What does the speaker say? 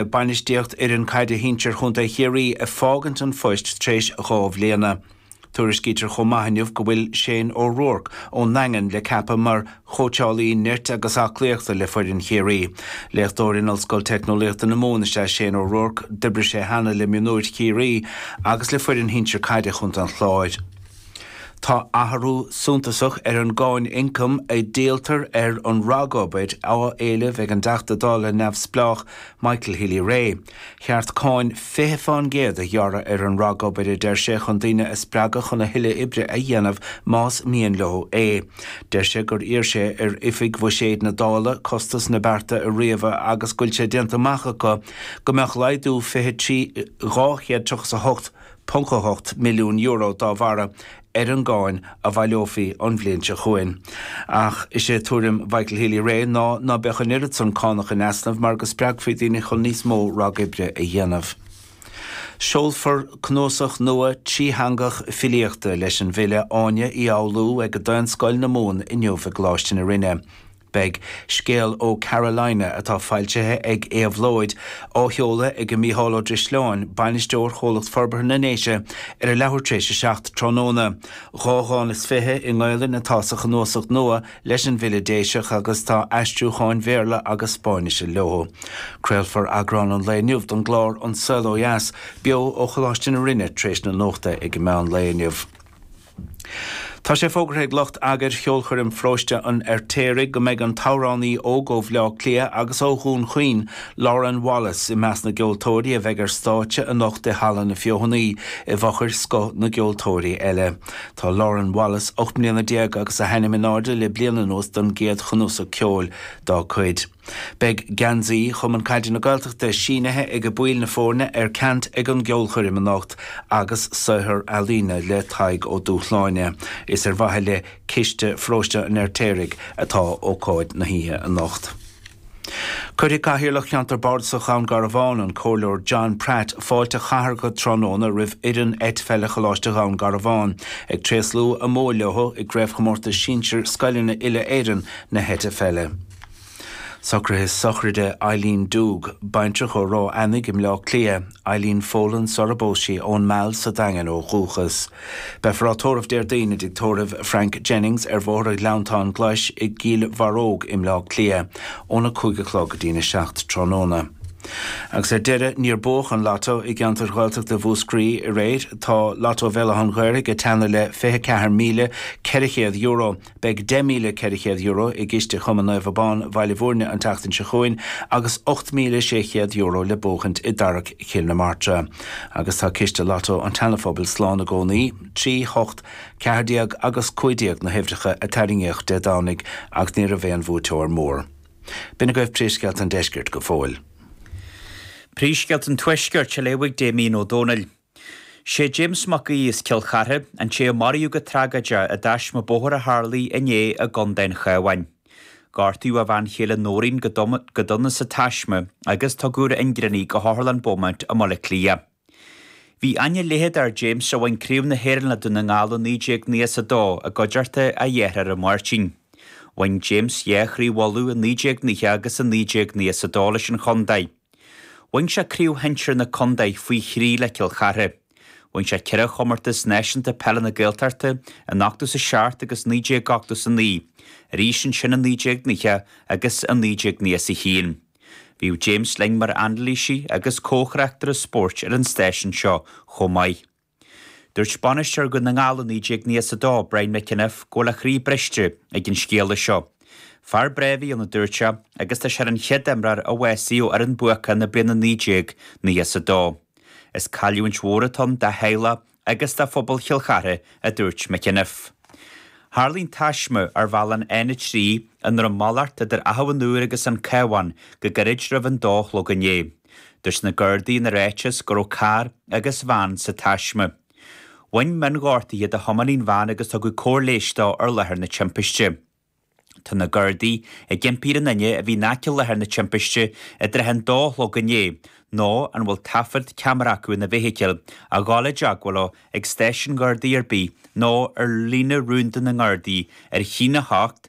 ag bainistíocht fhoireann caide shinsir Chontae Chiarraí ag fágaint an phoist tar éis dhá bhliana. Tuairiscítear chomh maith inniu go bhfuil Shane O'Rourke ón nDaingean le ceapadh mar chóitseálaí nirt agus aclaíochta le foireann Chiarraí. Léachtóir in Ollscoil Teicneolaíochta na Mumhan is ea Shane O'Rourke. D'oibrigh sé cheana le mionúir Chiarraí agus le foireann shinsir caide Chontae an Chláir. Tá athrú suntasach ar an gcáin ioncaim a dhíoltar ar an ragobair á éileamh ag an dTeachta Dála neamhspleách Michael Healy-Rae. Cheart cáin 20 fán gcéad a ghearradh ar an ragobair, a deir sé, chun daoine a spreagadh chun a thuilleadh oibre a dhéanamh más mian leo é. Deir sé gur iarr sé ar Oifig Bhuiséid na Dála costas na bearta a ríomhadh agus go bhfuil sé déanta amach acu go mbeadh laghdú 23 238 .8 milliún euro dá bharra ar an gcáin a bhaileofaí an bhliain seo chugainn. Ach is é tuairim Mhichael Healy-Rae ná ná beadh an oiread san cánach in easnamh mar go spreagfaí daoine chun níos mó ragoibre a dhéanamh. Seolfar cnuasach nua trítheangach filíochta leis an bhfile Áine Uí Fhoghlú ag Daonscoil na Mumhan inniu i gColáiste na Rinne. Beidh Scéal ó Carolina, atá foilsithe ag Éabhlóid, á sheoladh ag Micheál Ó Drisleáin, Bainisteoir Chomhlacht Forbartha na nDéise, ar a leathuair tar éis a seacht tráthnóna. Dhá dhán is fiche i nGaelainn atá sa chnuasach nua leis an bhfile Déiseach agus tá aistriúcháin Bhéarla agus Spáinnise leo. Craolfar eagrán an lae inniu den gclár An Saol Ó Dheas beo ó Choláiste na Rinne tar éis na Nuachta ag meán lae inniu. Tá sé fógartha ag lucht eagair Cheolchoirm Pharóiste an Fheirtéaraigh go mbeidh an t-amhránaí óg ó Bhleá Cliath agus ó Dhún Chaoin, Lauren Wallace, i measc na gceoltóirí a bheidh ar stáitse anocht i Halla na Feothanaí, i bhfochair scoth na gceoltóirí eile. Tá Lauren Wallace ocht mbliana déag agus a hainm in airde le bliain anuas don gcéad chnuasach ceoil dá cuid. Beidh geansaí Chumann Caide na Gaeltachta sínithe ag baill na foirne ar ceant ag an gceolchoirm anocht agus saothar ealaíne le Tadhg Ó Dúshláine. Is ar mhaithe le Ciste Pharóiste an Fheirtéaraigh atá ócáid na hoíche anocht. Cuirfidh Cathaoirleach Cheantar Bardasach Dhún Garbhán, an Comhairleoir John Pratt, fáilte chathartha tráthnóna roimh fhoireann eitpheile Choláiste Dhún Garbhán, ag tréaslú a mbua leo i gCraobhchomórtas Sinsir Scoileanna Uile-Éireann na hEitpheile. Socruithe Sochraide Eileen Doogue, baintreach ó Ráth Eanaigh i mBleá Cliath, Eileen Folan, sarar phós sí, ón Meal sa Daingean ó dhúchas. Beifear á tórramh Déardaoin i dTigh Tórraimh Frank Jennings ar Bhóthar an Ghleanntáin Ghlais i gCill Bharróg i mBleá Cliath óna cúig a chlog go dtína seacht tráthnóna. Agus ar deireadh, níor buadh an Lotto i gceantair Ghaeltachta Mhúscraí aréir. Tá Lotto Bhéal Átha an Ghaorthaidh ag teannadh le fiche ceathair míle ceithre chéad euro. Beidh €10,400 i gciste Chumann Naomh Abán Bhaile Mhúirne an tseachtain seo chugainn agus €8,600 le buachaint i dtarrac Chill na Martra. Agus tá ciste Lotto an tSeanaphobail slán i gcónaí, trí, hocht, ceathair déag agus cúig déag na huimhreacha a tarraingíodh Dé Domhnaigh ach ní raibh aon bhuaiteoir mór. B'in agaibh Príomhscéalta an Deiscirt go fóill. Príomhscéalta an Tuaiscirt, a léifidh Damien Ó Dónaill. Is é James Mac Aoidh as Cill Chartha, an té a maraíodh go tragóideach i dtaisme bóthair a tharlaigh inné i gContae an Chabháin. Gortaíodh a bhean chéile Nóirín go dona sa taisme agus tugadh ar ingearán í go hOtharlann Beaumont i mBaile Átha Cliath. Bhí aithne leitheadach ar James a bhain Craobh na hÉireann le Dún na nGall i 1992 i gcuideachta a dhearthára Máirtín. Bhain James dhá chraobh Uladh i 1990 agus i 1992 leis an chontae. Bhain sé craobh shinsir na contae faoi thrí le Cill Chartha. Bhain sé ceithre chomórtas náisiúnta peile na Gaeltachta in ochtó is a seacht agus naoi déag ochtó is a naoi, arís ansin in naoi déag naocha agus in naoi déag naocha is a haon. Bhíodh James linn mar anailísí agus comhthráchtaire spóirt ar an stáisiún seo chomh maith. Dúirt Bainisteoir Dhún na nGall i 1992, Brian McEniff, go bhfuil a chroí briste ag an scéala seo. Fear breá a bhí ann a dúirt sé agus tá sé ar an chéad imreoir a bhásaigh ó fhoireann bhuacach na bliana 1992. Is cailliúint mhór atá ann dá theaghlach agus do phobal Chill Chartha a dúirt McEniff. Tharlaigh an taisme ar bhealach an N3 i nDroim Malairt idir Achadh an Iúir agus An Cabhán go gairid roimh an dó a chlog inné. Dúirt na Gardaí ina ráiteas go raibh carr agus veain sa taisme. Bhain mionghortuithe do thiománaí an veain agus tugadh cóir leighis dó ar láthair na timpiste. Tá na Gardaí ag impí ar aon duine a bhí in aice láthair na timpiste i dtrátha an dó a chlog inné, nó a bhfuil taifead ceamara acu ina bhfeithicil, a ghabháil i dteagmháil leo ag stáisiún Gardaí ar bith nó ar líne rúnda na nGardaí ar chinn 8